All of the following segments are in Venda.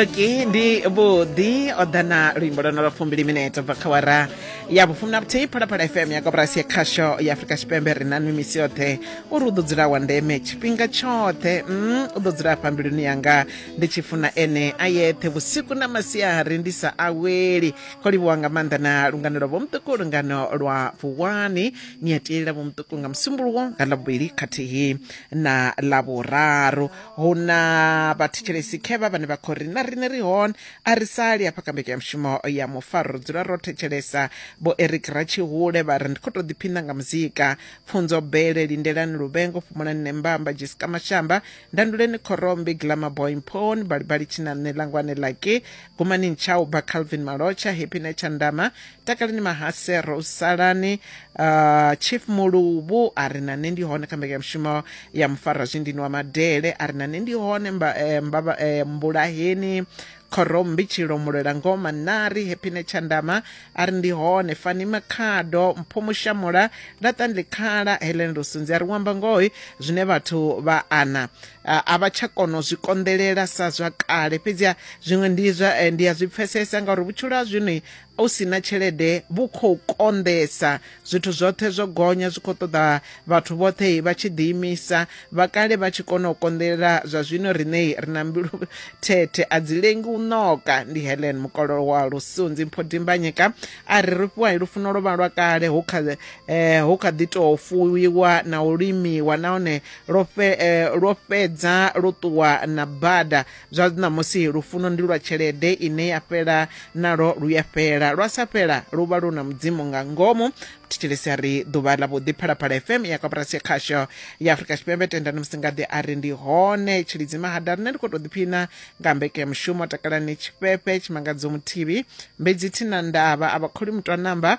ki ndi vhuḓi o ḓa na luimbo lwo no lwa fumbili minete bva kha wara ya vhufumi na vhuthihi phalaphala fm ya koporasi ya khasho ya afurika tshipembe ri na nwi misi yoṱhe uri u ḓo dzula wa ndeme tshifhinga tshoṱhe mm, u ḓo dzula afha mbiluni yanga ndi tshi funa ene a yeṱhe vhusiku na masiari ndi sa aweli ko livhuwa nga maanḓa na lungano lwa vhomuṱuku lungano lwa vuwani ni a tielela vhomuṱuku nga musumbuluwo nga ḽavhuvhili khathihi na ḽavhuraru hu na vhathetshelesi khevha vhane vha khou ri na riṋe ri hone a ri sali hafha kha mbekanyamushumo ya mufaro ri dzula ro thetshelesa vho eric ratshihule vha ri ndi khou tou ḓiphina nga muzika pfunzo bele lindelani luvhengo fhumulani nembamba jessica mashamba ndanduleni khorombi glamour boy mphoni balibali tshinanṋe langwane laki gumanini tshau bva calvin malotsha happy nature ndama takaleni mahasero salani uh, chief muluvhu a ri na nṋe ndi hone kha mbekanyamushumo ya mufarwa zwindini wa madele a ri na nṋe ndi hone mba, eh, mbava, eh, mbulaheni khorombi tshilomulwela ngoma nari hepine tshandama a ri ndi hone fani makhado mpho mushamula laṱanli khala helen lusunzi a ri wamba ngohi zwine vhathu vha ana a a vha tsha kona u zwi konḓelela sa zwa kale fhedziha zwiṅwe ndi zwa eh, ndi a zwi pfesesa ngauri vhutshilo ha zwino u si na tshelede vhu khou konḓesa zwithu zwoṱhe zwo gonya zwi khou ṱoḓa vhathu vhoṱhe vha tshi ḓiimisa vha kale vha tshi kona u konḓelela zwa zwino riṋei ri na mbilu thethe a dzi lengi u ṋoka ndi helen mukololo wa lusunzi mpho dimbanyeka a ri ri fhiwa lufuno lwo vha lwa kale hu kha eh, hu kha ḓi tou fuwiwa na u limiwa nahone lwo eh, fhedza lwo ṱuwa na bada zwa ṋamusi lufuno ndi lwa tshelede ine ya fhela nalwo lu ya fhela lwa sa fhela lu vha lu na mudzimu nga ngomu thetshelesi a ri ḓuvha ḽa vhuḓi phalaphala fm ya koporasi ya khasho ya afurika tshipembe tendani musingaḓi a ri ndi hone tshilidzi mahada rine ndi khou tou ḓiphina nga mbeke mushumo takalani tshifhefe tshimangadzo muthivi mbedzi thina ndavha a vhakholi mutwa namba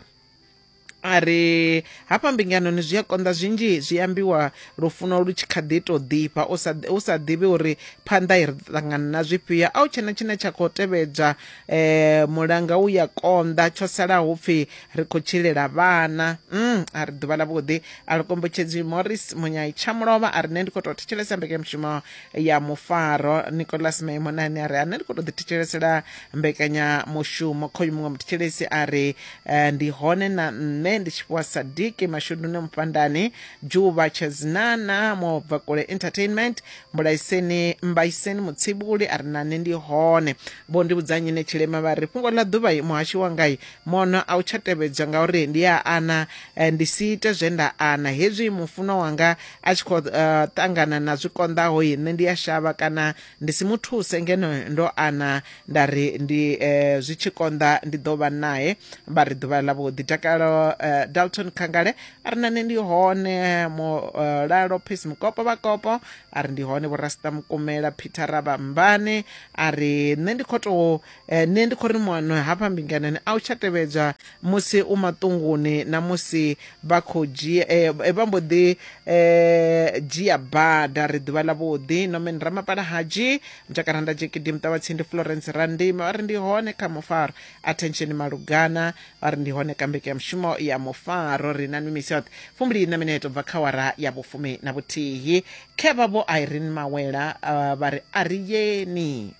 a ri hafha mbinganoni zwi a konḓa zwinzhi zwi ambiwa lufuno lu tshi kha ḓi tou ḓifha u sa ḓivhi uri phanḓa i ri ṱangana na zwifhio a u tshena tshine tsha khou tevhedzwa um mulanga u ya konḓa tsho salaho pfhi ri khou tshilela vhana um a ri ḓuvha ḽa vhuḓi a ri kombetshedzi morris munyai tsha mulovha a ri nṋe ndi khou tou thetshelesa mbekanyamushumo ya mufaro nicolas maimonani a ri ane ri khou tou ḓithetshelesela mbekanyamushumo khoyu muṅwe muthetshelesi a ri eh, ndi hone na nṋe ndi tshi fhiwa sadiki mashudune mufhandani dzhuvha tshezinana mubvakule entertainment mbulaiseni mbaiseni mutsibuli a ri nane ndi hone vho ndi vhudzanyi ne tshilema vha ri fhungo ḽa ḓuvha i muhashi wangai mono a u tsha tevhedzwa ngauri ndi a ana eh, ndi si ite zwe nda ana hezwi mufunwa wanga a tshi khou uh, ṱangana na zwi konḓaho nṋe ndi a shavha kana ndi si mu thuse ngeno ndo ana nda ri ndi eh, zwi tshi konḓa ndi ḓo vha nae vha ri ḓuvha ḽa vhuḓi takalo eh, dalton khangale a ri nane ndi hone mulalo eh, peace mukopo vhakopo a ri ndi hone vhorasta mukumela peter rabambane a ri nṋe ndi khou tou Eh, nṋe ndi khou ri muano hafha mbinganoni a u tsha tevhedzwa musi u maṱunguni na musi vha khou dzhia eh, eh, vha mbo ḓi eh, dzhia bada ri ḓuvha ḽa vhuḓi nomen ramapala hadzhi mutakaranda jekidi muṱavhatsindi florence randima vha ri ndi hone kha mufaro attention malugana vha ri ndi hone ka mbeke ya mushumo ya mufaro ri na mimisi yoṱhe fumbili na mineto u bva kha wara ya vhufumi na vhuthihi khevha vho irene mawela ah, vha ri a ri yeni